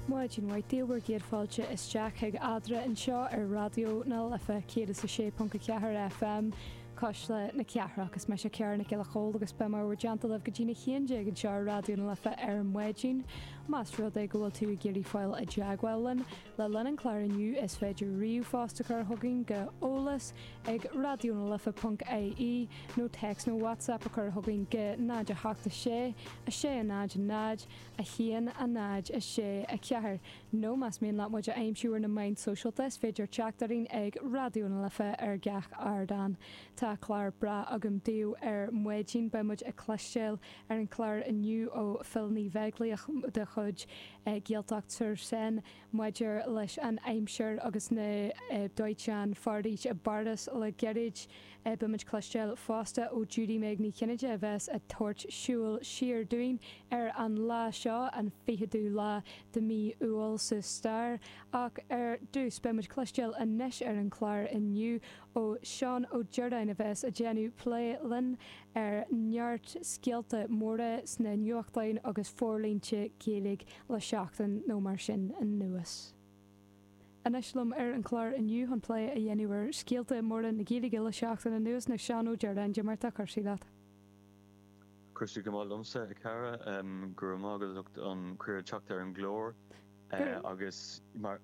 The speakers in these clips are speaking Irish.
Maidin mhaith daoibh agus céad fáilte isteach chuig Eadra anseo ar Raidió na Life 106.4 FM, Cuisle na Cathrach. Is mise Ciara Nic Giolla Chomhaill agus beidh mé in bhur dteannta libh go dtí na haon déag anseo ar Raidió na Life ar maidin. Más rud é go bhfuil tú ag iarraidh fáil i dteagmháil linn, Le linn an chláir inniu is féidir ríomhphost a chur chugainn go eolas ag raidionalife.ie nó text nó whatsapp a chur chugainn go 08 6 6 0 0 1 0 6 4 nó más mian leat muid a aimsiú ar na meáin sóisialta is féidir teacht orainn ag Raidió na Life ar gach ardán. Tá clár breá agam daoibh ar maidin. Beidh muid ag cloisteáil ar an chlár inniu ó Phil Ní Bheaglaoich de chuid. Gaeltacht sur Seine maidir leis an aimsir agus na dóiteáin foraoise i bPáras le gairid. Beidh muid cloisteáil fosta ó Judy Meg Ní Chinnéide a bheas ag tabhairt siúil siar dúinn ar an lá seo, an ficheadú lá de mí Iúil sa stair. Ach ar dtús, beidh muid cloisteáil anois ar an chlár inniu ó Seán Ó Direáin a bheas ag déanamh plé linn ar neart scéalta móra sna nuachtáin agus forlínte Gaeilge le seachtain nó mar sin anuas. Anois liom ar an chlár inniu chun plé a dhéanamh ar scéalta móra na Gaeilge le seachtain anuas ná Seán Ó Direáin cad é mar atá cúrsaí leat. Cúrsaí go maith liomsa a chara. Go raibh maith agat as ucht an cuireadh teacht ar an gclár agus mar.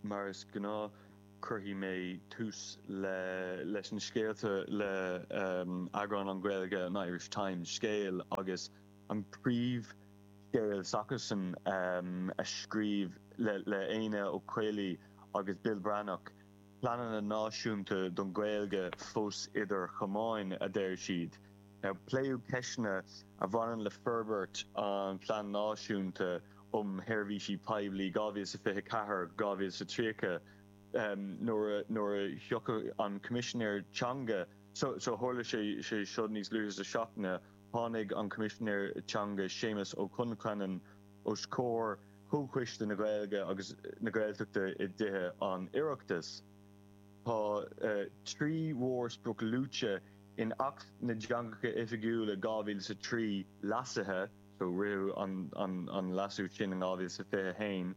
Mar is gnáth cuirfidh mé tús leis na scéalta le eagrán an Ghaeilge an Irish Times Scéal agus an príomhscéal s'acusan scríofa le Éanna Ó Caollaí agus Bill Breathnach. Pleananna náisiúnta don Ghaeilge fós idir chamáin, a deir siad. Pléadh ceisteanna a bhaineann le forbairt an Phlean Náisiúnta um Sheirbhísí Poiblí 2024, 2030 nuair a tháinig an Coimisinéir Teanga. So tharla sé seo níos luaithe sa tseachtain. Tháinig an Coimisinéir Teanga Séamas Ó Concheanainn os comhair Chomhchoiste na Gaeilge agus na Gaeltachta i dTithe an Oireachtais. Tá trí mhórsprioc luaite in Acht na dTeangacha Oifigiúla 2003, leasaithe, so ritheadh an leasú sin in 2021,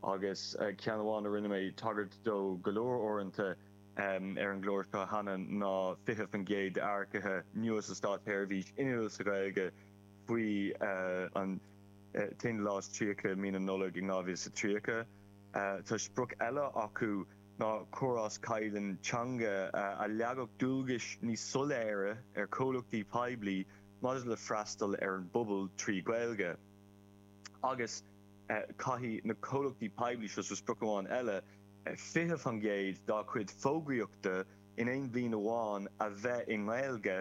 agus ceann amháin a rinne mé tagairt dó go leor uaireanta ar an gclár seo cheana ná 20% d'earcaithe nua sa státsheirbhís inniúil sa Ghaeilge. faoi an t-aon lá is tríocha mhí na Nollag in 2030. Tá sprioc eile acu ná córás caighdeán teanga a leagfadh dualgais níos soiléire ar chomhlachtaí poiblí maidir le freastal ar an bpobal trí Ghaeilge. Agus caithfidh na comhlachtaí poiblí seo, so sprioc amháin eile, 20% dá cuid fógraíochta in aon bhliain amháin a bheith i nGaeilge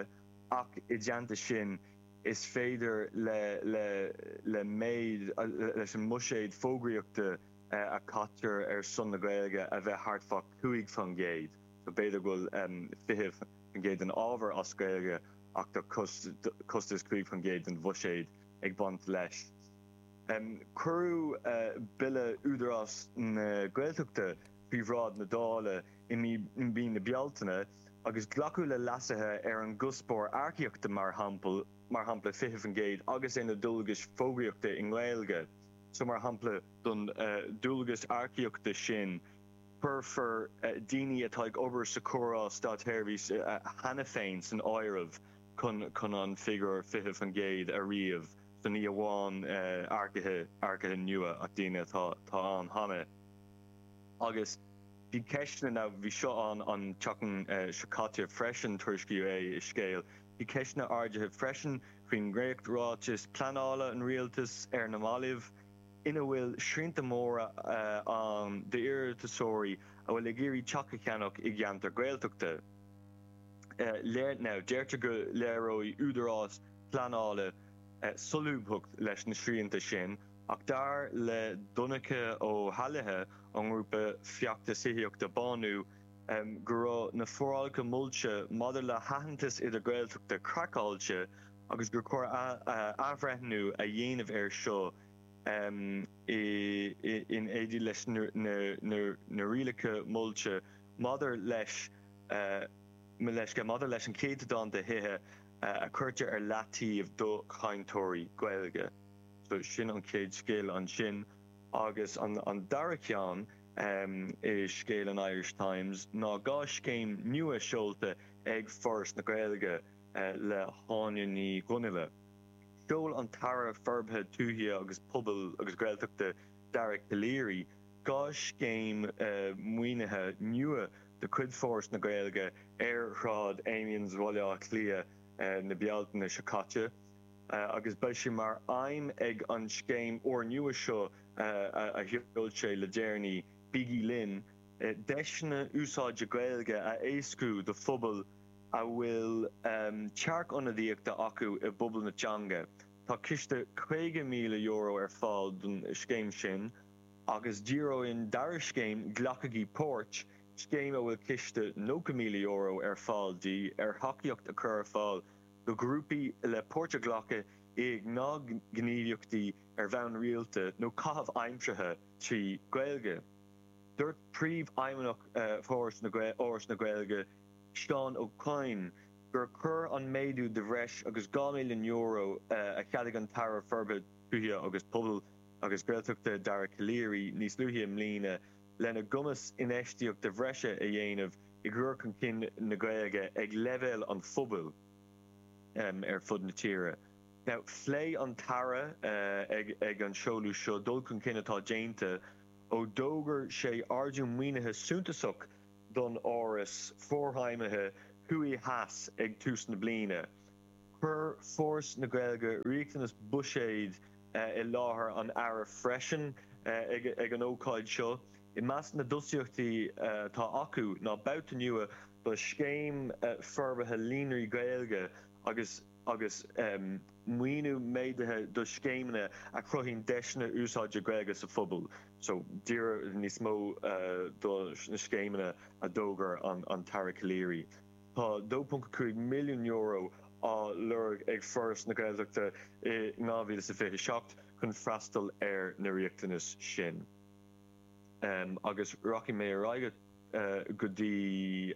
ach i dteannta sin, is féidir le méid leis an mbuiséad fógraíochta a chaitear ar son na Gaeilge a bheith thart fá 5 faoin gcéad, so b'fhéidir go bhfuil 20% den ábhar as Gaeilge ach tá costas 5 faoin gcéad den bhuiséad ag baint leis. Cuireadh Bille Údarás na Gaeltachta faoi bhráid na Dála i mí na Bealtaine, agus glacadh le leasuithe ar an gcuspóir earcaíochta mar shampla 20% agus ar na dualgais fógraíochta i nGaeilge so mar shampla. Don dualgas earcaíochta sin cuirfear daoine atá ag obair sa chóras státseirbhíse cheana féin san áireamh chun an figiúr 20% a ríomh so ní amháin earcaithe nua ach daoine atá ann cheana agus Bhí ceisteanna ná, bhí seo ann an tseachtain seo caite freisin, tuairiscíodh é i Scéal. Bhí ceisteanna ardaithe freisin faoin ndréachtráiteas pleanála an rialtais ar na mallaibh ina bhfuil srianta móra ann d'iarratasóirí a bhfuil ag iarraidh teach a cheannach i gceantar Gaeltachta. Deirtear go léireoidh údarás pleanála solúbthacht leis na srianta sin Ach dar le Donncha Ó hÉallaithe ón ngrúpa feachtais tithíochta BÁNÚ go raibh na forálacha molta maidir le haitheantas idir-Ghaeltachta craiceáilte agus gur chóir athbhreithniú a dhéanamh ar seo in éindí leis na rialacha molta maidir leis an chéatadán de thithe a chuirtear ar leataobh do chainteoirí Gaeilge. So sin an chéad scéal ansin. Agus an dara ceann i Scéal in Irish Times ná dhá scéim nua seolta ag Foras na Gaeilge le hÁine Ní Dhonghaile. Sheol an tAire Forbartha Tuaithe agus Pobail agus Gaeltachta Dara Calleary dhá scéim maoinithe nua de chuid Foras na Gaeilge ar Shráid Amiens Bhaile Átha Cliath na Bealtaine seo caite. agus beidh sé mar aidhm ag an scéim úrnua seo a sheol sé le déanaí, Bígí Linn, deiseanna úsáide Gaeilge a éascú do phobail a bhfuil tearcionadaíocht acu i bpobal na teanga. Tá ciste €50,000 ar fáil don scéim sin agus díreoidh an dara scéim, Glacaigí Páirt, scéim a bhfuil ciste €90,000 ar fáil di, ar thacaíocht a chur ar fáil do ghrúpaí le páirt a ghlacadh i ngnáthghníomhaíochtaí ar bhonn rialta nó caitheamh aimseartha trí Ghaeilge. Dúirt Príomhfheidhmeannach Fhoras na Gaeilge, Seán Ó Coinn, gur chuir an méadú de bhreis agus €2 milliún a cheadaigh an tAire Forbartha Tuaithe agus Pobail agus Gaeltachta Dara Calleary níos luaithe i mbliana, lena gcumas infheistíocht bhreise a dhéanamh i gcur chun cinn na Gaeilge ag leibhéal an phobail ar fud na tíre. Phléigh an tAire ag an seoladh seo dul chun cinn atá déanta ó d'fhógair sé ardú maoinithe suntasach don Fhoras Forfheidhmithe Thuaidh Theas ag tús na bliana. Chuir Foras na Gaeilge riachtanais bhuiséid i láthair an Aire freisin ag an ócáid seo. I measc na dtosaíochtaí atá acu ná babhta nua do Scéim Forbartha Líonraí Gaeilge agus maoiniú méadaithe do scéimeanna a chruthaíonn deiseanna úsáide Gaeilge sa phobal. So díreach níos mó do na scéimeanna a d'fhógair an tAire Calleary. Tá €2.5 milliún á lorg ag Foras na Gaeltachta i 2027 chun freastal ar na riachtanais sin agus rachaidh mé ar aghaidh go dtí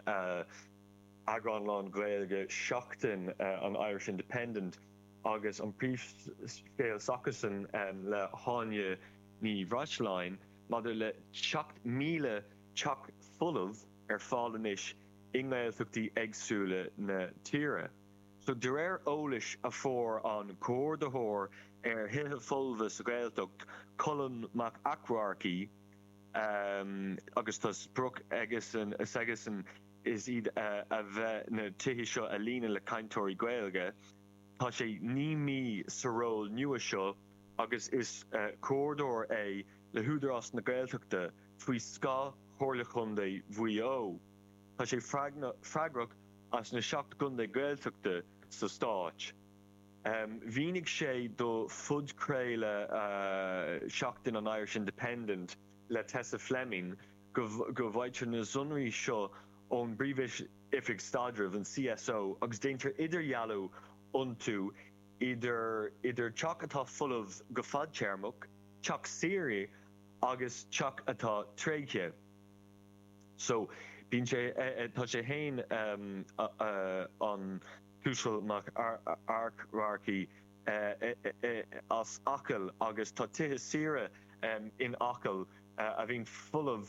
eagrán lán-Ghaeilge Seachtain an Irish Independent agus an príomhscéal s'acusan le hÁine Ní Bhreisleáin maidir le 7,000 teach folamh ar fáil anois i nGaeltachtaí éagsúla na tíre. So de réir eolais a fuair an Comhordaitheoir ar Thithe Folmha sa Ghaeltacht, Colm Mac Eachmharcaigh, agus tá sprioc s'aigesan is iad a bheith na tithe seo a líonadh le cainteoirí Gaeilge, tá sé naoi mí sa ról nua seo agus is Comhordaitheoir é le hÚdarás na Gaeltachta. faoi scáth Chomhairle Chontae Mhaigh Eo. Tá sé freagrach as na seacht gcontae Gaeltachta sa stáit. Mhínigh sé do phodchraoladh Seachtain an Irish Independent le Tessa Fleming go bhfaightear na sonraí seo ón bPríomh-Oifig Staidrimh, an CSO, agus déantar idirdhealú iontu idir teach atá folamh go fadtéarmach, teach saoire, agus teach atá tréigthe so bíonn sé tá sé féin an t-uasal Mac Eachmharcaigh as Acaill agus tá tithe saoire in Acaill a bhíonn folamh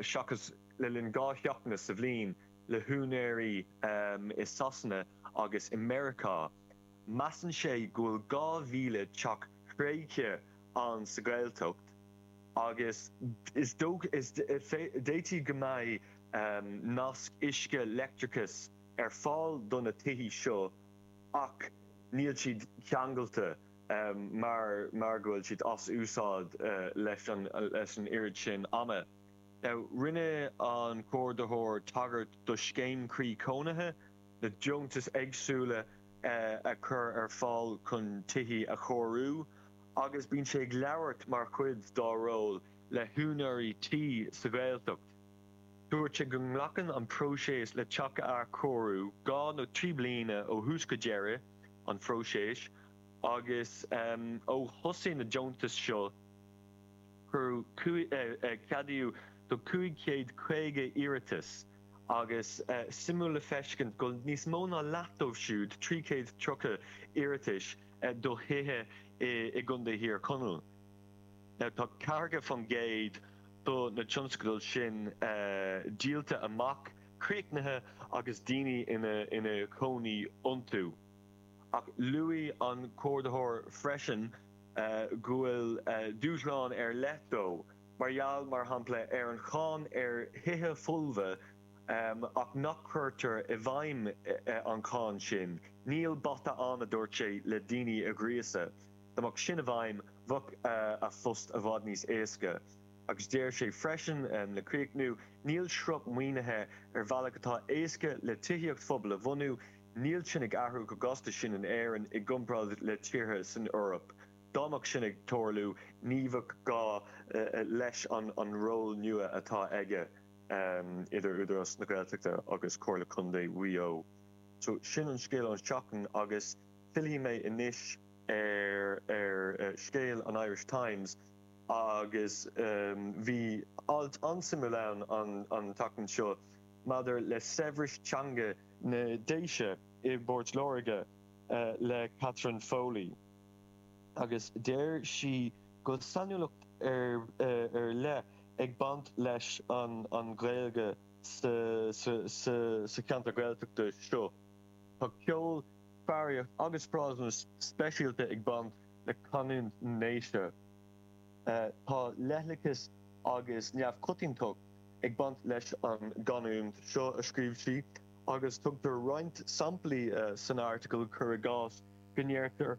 seachas le linn dhá sheachtain sa bhliain le húinéirí i Sasana agus i Meiriceá. Measann sé go bhfuil 2,000 teach tréigthe ann sa Ghaeltacht agus d'fhéadfadh go mbeidh nasc uisce leictreachais ar fáil do na tithe seo ach níl siad ceangailte mar go bhfuil siad as úsáid leis an oiread sin ama. Rinne an Comhordaitheoir tagairt do scéim Croí Cónaithe. na deontais éagsúla a chur ar fáil chun tithe a chóiriú agus bíonn sé ag labhairt mar chuid dá ról le húinéirí tí sa Ghaeltacht. Dúirt sé go nglacann an próiseas le teach a athchóiriú dhá nó trí bliana ó thús go deireadh an phróisis agus ó thosaigh na deontais seo cuireadh ceadaíodh do 550 iarratas. agus suimiúil le feiscint go níos mó ná leath dóibh siúd, 330 iarratais do thithe i gContae Thír Chonaill, tá 40 faoin gcéad do na tionscadail sin díolta amach, críochnaithe agus daoine ina gcónaí iontu. Ach luaigh an Comhordaitheoir freisin go bhfuil dúshlán ar leith dó, mar gheall, mar shampla, ar an cháin ar thithe folmha, ach nach gcuirtear i bhfeidhm an cháin sin. Níl bata ann, a dúirt sé, le daoine a ghríosadh. Dá mbeadh sin i bhfeidhm, bheadh a phost i bhfad níos éasca. Agus deir sé freisin, le críochnú, Níl sruth maoinithe ar bhealach atá éasca le tithíocht phobail a bhunú, níl sin ag athrú chomh gasta sin in Éirinn i gcomparáid le tíortha san Eoraip. Dá mbeadh sin ag tarlú ní bheadh gá leis an ról nua atá aige idir Údarás na Gaeltachta agus Comhairle Contae Mhaigh Eo. So sin an scéal ón tseachtain agus fillfidh mé anois ar scéal an Irish Times agus bhí alt an-suimiúil ann an tseachtain seo maidir le saibhreas teanga na nDéise i bPort Láirge le Catherine Foley. agus deir sí go bhfuil sainiúlacht ar leith ag baint leis an Ghaeilge sa cheantar Gaeltachta seo. Tá ceol, foghraíocht agus frásanna speisialta ag baint le canúint na nDéise. Tá leithleachas agus neamhchoitiantacht ag baint leis an gcanúint seo, a scríobh sí, agus tugtar roinnt samplaí san airteagal, cuir i gcás, go ndeirtear.